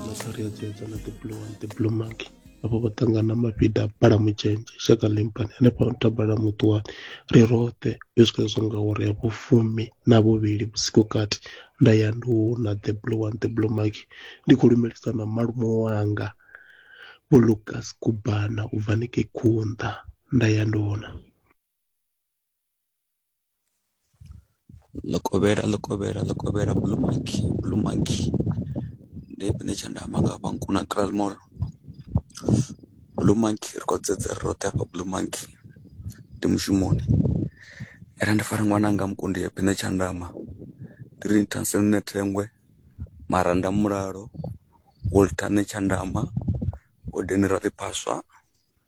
masariadzedza na the blue one the blue monkey avho vho ṱangana mafhida a bala mutshenzhe shaka limpani hanefha tabala muṱuwani ri roṱhe yo swika zwo nga uri ya vhufumi na vhuvhili vhusiku kati nda ya ndi na the blue one the blue maki ndi khou lumelisa na malume wanga vho lucas kubana u bva ni ke khunḓa nda ya ndi Ḽikovhela, ḽikovhela, ḽikovhela blue monkey, blue monkey ndi tshipembe tsha nda amba nga hafha Nkuna Kraal mall blue monkey ri khou dzedza ri roṱhe hafha blue monkey ndi mushumoni ara ndi fara ṅwananga mukundi ya phina tshandama ndi ri ni thase ni nṋe thengwe maranda mulalo Walter nṋe tshandama hodeni ra ḽi phaswa.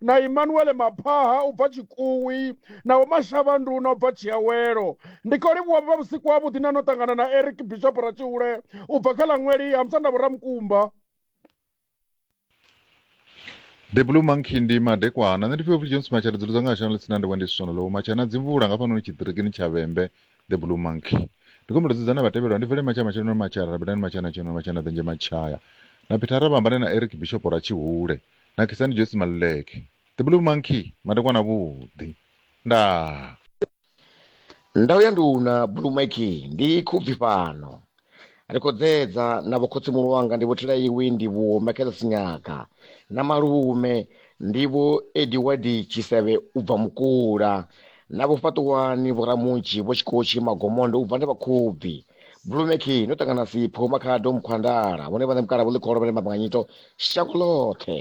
na Imanuele Maphaha u bva Tshikuwi na Vho Mashavha Nduna u bva Tshiawelo. Ndi khou livhuwa vha vhusiku ha vhuḓi na no ṱangana na Eric Bishop Ratshihule u bva kha ḽa Ṅweli ha Musanda Vho Ramukumba. The Blue Monkey ndi madekwana nṋe ndi pfhe upfi Jones Matshana dzulo dzanga shano ḽitsina ndi wendi siswana ḽo Matshana dzi mvula nga fhanoni tshiṱirikini tsha Vhembe The Blue Monkey ndi khombela dzudza na vhatevhelwa ndi vele matshaya matshelo na matshaya rabelani matshana tshino matshana ḓenje matshaya na Peter Rabamba na Eric Bishop ra tshihule nakhisani josi maluleke the blue monkey madekwana avhuḓi ndaa ndau ya nduna blue mike ndi khubvi fhano ri khou dzedza na vhokhotsimulu wanga ndi vhotela iwi ndi vho michael sinyaga na malume ndi vho ediwadi tshisevhe u bva mukula na vho fhaṱuwani vho ramunzhi vho tshikotshi magomondo u bva ndi vhakhubvi blue meki no ṱangana sipho makhado mukhwandala vhone vhaṋe mukala vho ḽikholo vhane mabanganyito shango ḽoṱhe